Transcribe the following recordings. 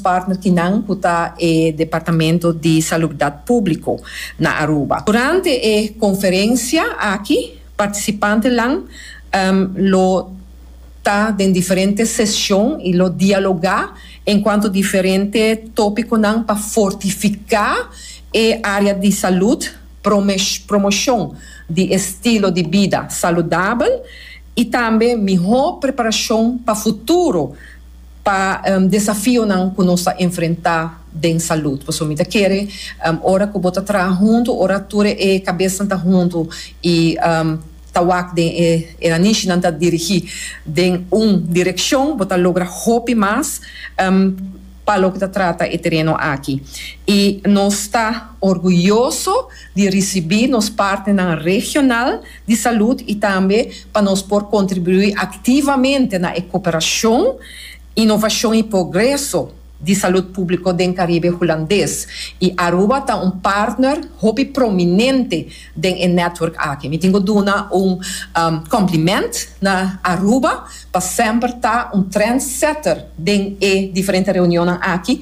partnerkinan ku ta e Departamento di Salubdat Públiko na Aruba. Durante e konferensia aki partisipantenan lo ta den diferente seshon i lo dialogá enkuanto diferente tópikonan pa fortifiká e área di salud, promoshon di estilo di bida saludabel i tambe mihó preparashon pa futuro. pa desafionan cu nos ta enfrenta den salud. Pasobra mi ta kere ora cu bo ta traha hunto, ora tur e cabesnan ta hunto y ta wak den e eranishnan ta dirigi den un direccion, bo ta logra hopi mas pa loke ta trata e tereno aki. Y nos ta orguyoso di ricibi nos partnernan regional, di salud y tambe pa nos por contribui activamente na e cooperacion, innovacion y progreso di salud publico den Caribe Hulandes y Aruba ta un partner hopi prominente den e network aki. Mi tin cu duna un compliment na Aruba. pa semper ta un trendsetter den e diferente reunionnan aki,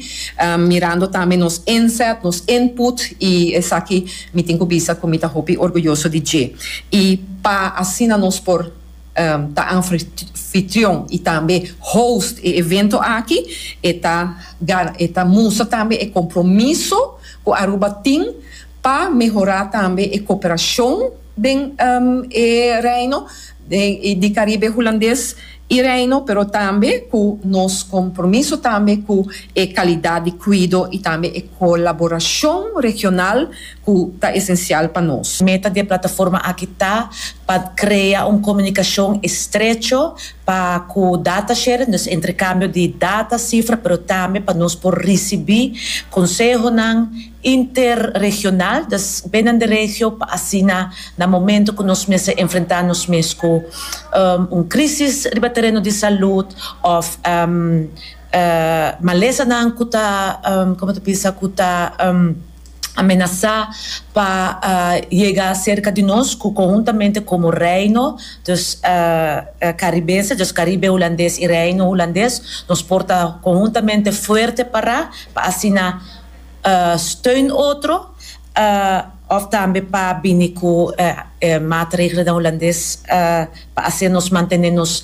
mirando tambe nos inzet, nos input y esaki mi tin cu bisa cu mi ta hopi orguyoso di dje. Y pa asina nos por ta anfitrion y tambe host e evento aki e ta e ta mustra tambe e compromiso cu Aruba tin pa mehora tambe e cooperacion den e Reino. den e di Caribe Hulandes y Reino, pero tambe cu nos compromiso tambe cu e calidad di cuido y tambe e colaboracion regional cu ta esencial pa nos. Meta di e plataforma aki ta pa crea un comunicacion estrecho pa cu data sharing, dus entrecambio di data, cifra, pero tambe pa nos por ricibi consehonan interregional, dus binnen de regio, pa asina na momento ku nos mester enfrentá nos mes ku un krísis riba tereno di salud òf malesanan ku ta, komo ta bisa, ku ta amenasá pa yega serka di nos, ku konhuntamente komo Reino, dus Karibense, dus Karibe Hulandes i Reino Hulandes, nos por ta konhuntamente fuerte pará pa asina. steun otro òf tambe pa bini ku e matregelnan hulandes pa hasi nos mantené nos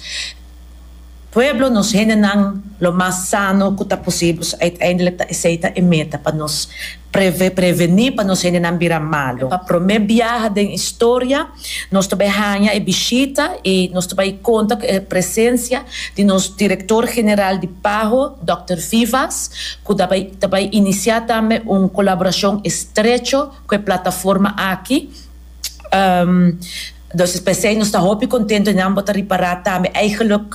pueblo, nos hendenan lo mas sano ku ta posibel. So uiteindelijk ta esei ta e meta pa nos prevení pa nos hendenan bira malu. Pa promé biaha den historia. Nos ta bai haña e bishita i nos ta bai konta ku e presensia di nos direktor general di Paho, dòkter Vivas, ku ta bai ta bai inisiá tambe un kolaborashon estrecho ku e plataforma aki. Entonces p'esei nos ta hopi kontentu i nan bo ta ripará tambe, eigenlik,